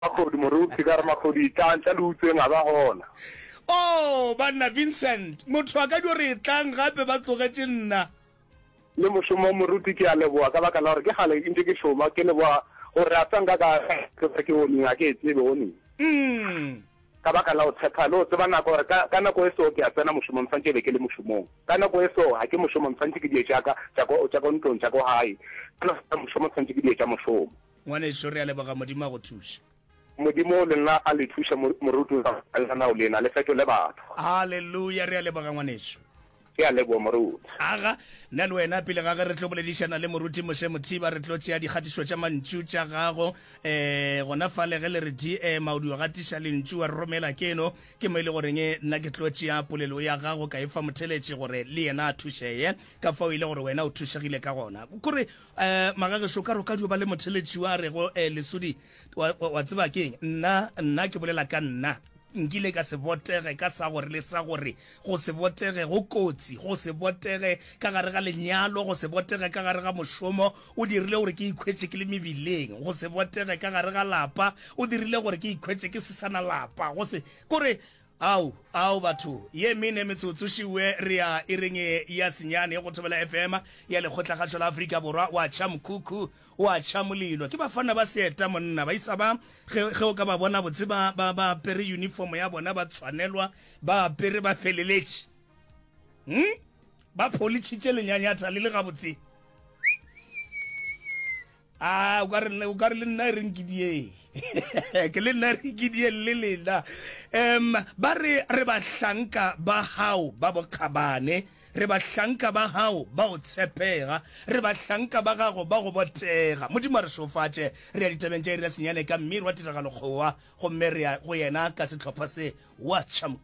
Makhodi moruti ka re makhodi tlang tla le utsweng a ba gona. Oh banna Vincent motho a ka dio re tlang gape ba tlogetše nna. Le mošomo moruti ke a leboa ka baka la gore ke kgale ntše ke šoma ke leboa gore re a tswa nka ka tlosa ke oning a ke e tsebe oning. Umm. Ka baka la go tshepa le go tseba nako gore ka ka nako e so ke a tsena mošomong swantše be ke le mošomong ka nako e so ga ke mošomong swantše ke die tša ka tša ko tša ko ntlong tša ko gae ka nako ya mošomo swantše ke die tša mošomo. Ngwanešu, re a leboga. Modimo a go thuše. Modimo le nna a le thuše, mo, morutwa. Lenanao lena le fetole batho. Haleluya! Re a leboga, ngwanešu. Ke a leboa, moruti. Aga, nna le wena, pele ga ge re tlo boledišana le Moruti Moshe Mothiba, re tlo tšea dikgatišo tša mantšu tša gago, e, gona fale, ge le re di, e, Maudi o gatiša Lentšu, wa re romela keno. Ke mo e le goreng nna ke tlo tšea polelo ya gago ka e fa motheletši, gore le yena a thušee, ka fao e le gore wena o thušegile ka gona. Kore, Eh, magagešo, ka roka dio ba le motheletši wa rego, eh, lesodi, wa, wa, wa tseba keng, nna, nna ke bolela ka nna, nkile ka se botege ka sa gore le sa gore, go se botege go kotsi, go se botege ka gare ga lenyalo, go se botege ka gare ga mošomo, o dirile gore ke ikhwetše ke le mebileng, go se botege ka gare ga lapa, o dirile gore ke ikhwetše ke se sana lapa, go se, kore, Ao, ao batho, ye mene metsotso šiue re a ireng e ya senyane go Thobela FM ya Lekgotlakgašo la Afrika Borwa. Wa tšha mokhukhu, wa tšha molilo. Ke bafana ba seeta monna. Baisa ba, ge, ge o ka ba bona botse ba, ba, ba apere yunifomo ya bona, ba tshwanelwa, ba apere, ba feleletše. Hum? Ba pholitšhitše lenyanyatha le le gabotse. A o ka re o ka re le nna re nkidieng ke le nna re nkidieng le lena em ba re re bahlanka ba hao ba bokgabane re bahlanka ba hao ba o tshepega re bahlanka ba gago ba go botega modimo a re šofatše re ya ditabeng tša ira senyane ka mmiri wa tiragalo kgowa gomme re ya go yena ka setlhopha se wa chamk